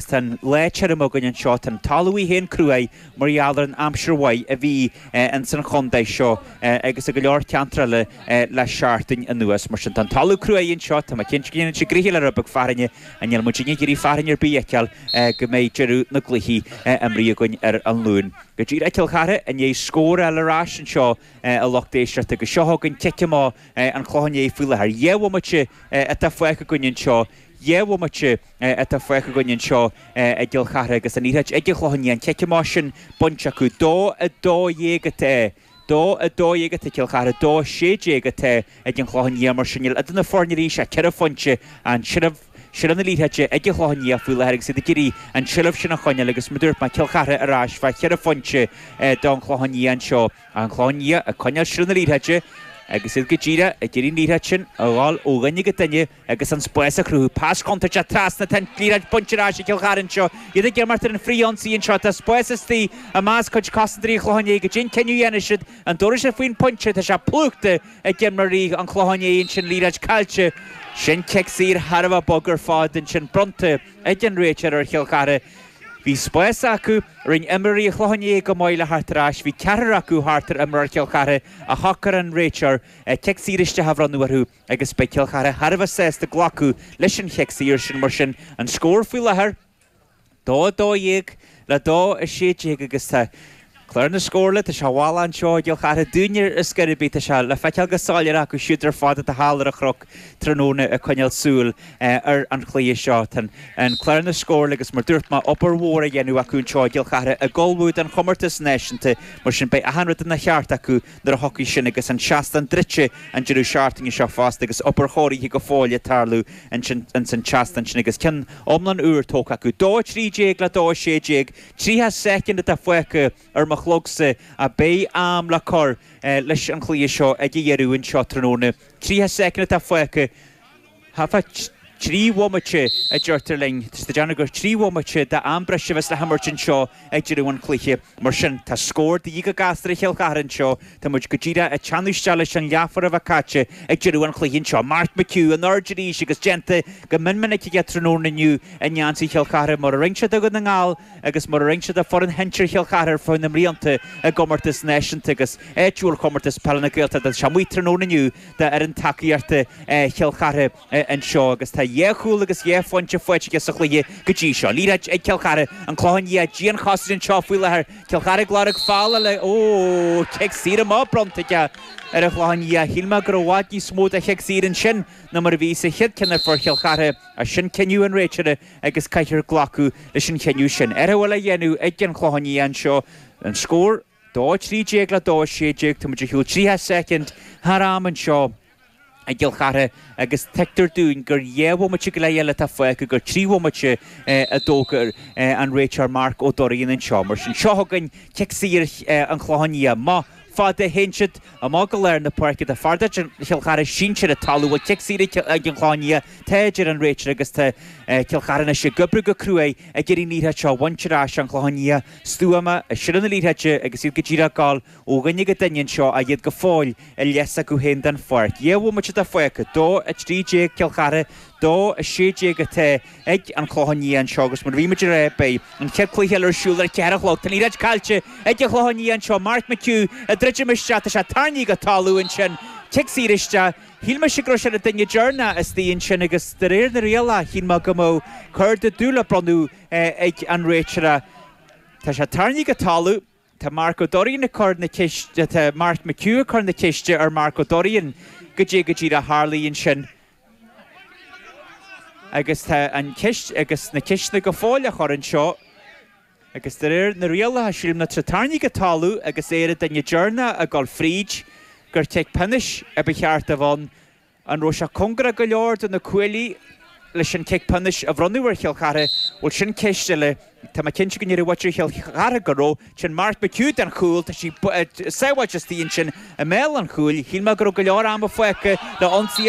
Tá an lá tirim againn anseo. Tá an talamh í féin cruaidh mar gheall ar an aimsir mhaith a bhí ins an chondae seo agus i go leor ceantar eile le seachtain anuas. Mar sin, tá an talamh cruaidh anseo. Tá mé cinnte go ndéanfadh sé gnoithe le rud beag fearthainne ach níl muid ag iarraidh fearthainn ar bith a fheiceáil go mbeidh deireadh na gcluichí imrithe againn ar an Luan. Go díreach Cill Chartha i ndiaidh scóráil ar ais anseo a lucht éisteachta agus seo chugainn cic amach an Chlocháin Léith faoi láthair. Dhá bhomaite atá fágtha againn anseo. Dhá bhomaite. atá fágtha againn anseo i gCill Chartha agus an liathróid ag an Chlochán Liath, an cic amach sin bainte acu. Dó a dó dhéag atá Dó a dó dhéag atá ag Cill Chartha, dó a sé déag atá ag an Chlochán Liath mar sin níl idir na foirne arís ach ceithre phointe, an tseilbh, seilbh na liathróide ag an Chlochán Liath faoi láthair agus iad ag iarraidh an tseilbh sin a choinneáil agus mar dúirt mé Cill Chartha ar ais fá cheithre phointe don Chlochán Liath anseo. An Chlochán Liath ag coinneáil seilbh na liathróide agus iad go díreach ag iarraidh an liathróid sin a ghabháil ó dhuine go duine agus an spás a chruthú. Pas contúirteach trasna tá an liathróid bainte ar ais ag Cill Chartha anseo, iad ag imeacht ar an frith-ionsaí anseo. Tá spás istigh i measc cuid cosantóirí an Chlocháin Léith goidé an cinneadh a dhéanfaidh siad an dtabharfaidh siad faoin bpointe. Tá sé plúchta ag imreoirí an Chlocháin Léith ansin, liathróid caillte. Sin cic saor thar a bheith bog ar fad ansin, bronnta ag an réiteoir ar Chill Chartha. Bhí spás acu, rinne imreoirí an Chlocháin Léith go maith le theacht ar ais, bhí ceathrar acu thart ar imreoir Chill Chartha ach shocraigh an réiteoir cic saor isteach a bhronnadh orthu. agus beidh Cill Chartha thar a bheith sásta glacadh leis an chic saor sin mar sin. An scór faoi láthair, 2 12 le 2 16 agus tá clár na scóranna, tá sé i bhfolach anseo i gCill Chartha, dúinne ar scor ar bith, tá sé le feiceáil go soiléir acu siúd ar fad atá thall ar an chnoc tráthnóna ag coinneáil súil ar an chluiche seo. Tá an clár na scóranna agus mar dúirt mé, obair mhór á dhéanamh acu anseo i gCill Chartha ag ullmhú don chomórtas náisiúnta mar sin beidh achan rud ina cheart acu Nuair a thiocfaidh sin agus an seastán druidte, an deireadh seachtaine seo fosta, agus obair chóirithe go fóill le tarlú ansin ins an tseastán sin, agus ceann iomlán úr tógtha acu. Dó a trí déag le dó a sé déag, tríocha soicind atá fágtha ar mo chlogsa, ach beidh am le cur leis an chluiche seo ag a dheireadh anseo tráthnóna. Tríocha soicind atá fágtha. Thart fá trí bhomaite, a deirtear linn. Is deimhin gur trí bhomaite d'am breise a bheas le himirt anseo ag deireadh an chluiche. Mar sin, tá scór de dhíth go gasta ar Chill Chartha anseo. Tá muid go díreach ag teannadh isteach leis an leathuair a bheith caite ag deireadh an chluiche anseo. Mark McHugh in airde arís agus déanta go mion minic aige tráthnóna inniu i ngeansaí Chill Chartha, mar a rinne sé do Dhún na nGall agus mar a rinne sé do foireann shinsir Chill Chartha ar feadh na mblianta i gcomórtais náisiúnta agus áitiúil Chomórtas Peile na Gaeltachta. Tá sé amuigh tráthnóna inniu. d'fhoireann tacaíochta Chill Chartha anseo agus tá dhá chúl agus dhá phointe faighte aige sa chluiche go dtí seo. Liathróid ag Cill Chartha, an Clochán Liath dianchosaint anseo faoi láthair. Cill Chartha ag lorg faill le, ó, cic saor amach bronnta aige ar an Chlochán Liath. Shíl mé go raibh i bhfad níos mó de chic saor ansin ná mar a bhí sa chéad ceann a fuair Chill Chartha ach sin cinneadh an réiteora agus caithfear glacadh leis an chinneadh sin. Athrú eile á dhéanamh ag an Chlochán Liath anseo, an scór? 2:13 le 2:16, Tá muid ag gabháil 30 soicind thar am anseo i gCill Chartha agus tuigtear dúinn gur dhá bhomaite go leith eile atá fágtha gur trí bhomaite a d'fhógair an réiteoir Mark Ó Doirín anseo. Mar sin, seo chugainn cic saor an Chlocháin Liath. Modh fada a théann siad amach go lár na páirce fear de chuid Chill Chartha sínte ar an talamh bhuel cic saor ag an Chlochán Liath atá a deir an réiteoir agus tá Cill Chartha anois ag oibriú go cruaidh ag iarraidh an liathróid seo a bhaint ar ais An Clochán Liath stuama, i seilbh na liathróide agus iad go díreach ag gabháil ó dhuine go duine anseo, ach iad go fóill i leith s'acu féin den pháirc. Dhá bhomaite fágtha, 2, 13, Cill Chartha, 2, 16, atá ag An Clochán Liath anseo, agus mar a bhí muid ag rá, beidh an chéad cluiche eile ar siúl ar a ceathair a chlog. Tá an liathróid caillte ag An Clochán Liath anseo, Mark McHugh ag druidim isteach, tá sé tarraingthe go talamh ansin, cic saor isteach, shíl mise go raibh sé ar an duine deireanach istigh ansin, agus de réir na rialacha, shíl mé go mbeadh cárta dubh le bronnadh, ag an réiteoir. Tá sé tarraingthe go talamh. Tá Mark Ó Doirín ag cur na ceiste, tá Mark McHugh ag cur na ceiste ar Mark Ó Doirín, goidé go díreach a tharlaigh ansin. Agus tá an cheist, agus na ceisteanna go fóill á chur anseo. Agus de réir na rialacha, sílim má tá sé tarraingthe go talamh agus é ar an duine deireanach ag gabháil fríd, gur cic pionóis a ba cheart a bhronn An raibh sé cóngarach go leor do na cuaillí leis an cic pionóis a bhronnadh ar Chill Chartha? Bhuel, sin ceist eile. Tá mé cinnte go ndéarfadh muintir Chill Chartha go raibh. Téann Mark McHugh don chúl, tá sí sábháilte istigh ansin i mbéal an chúil. Shíl mé go raibh go leor ama fágtha le ionsaí.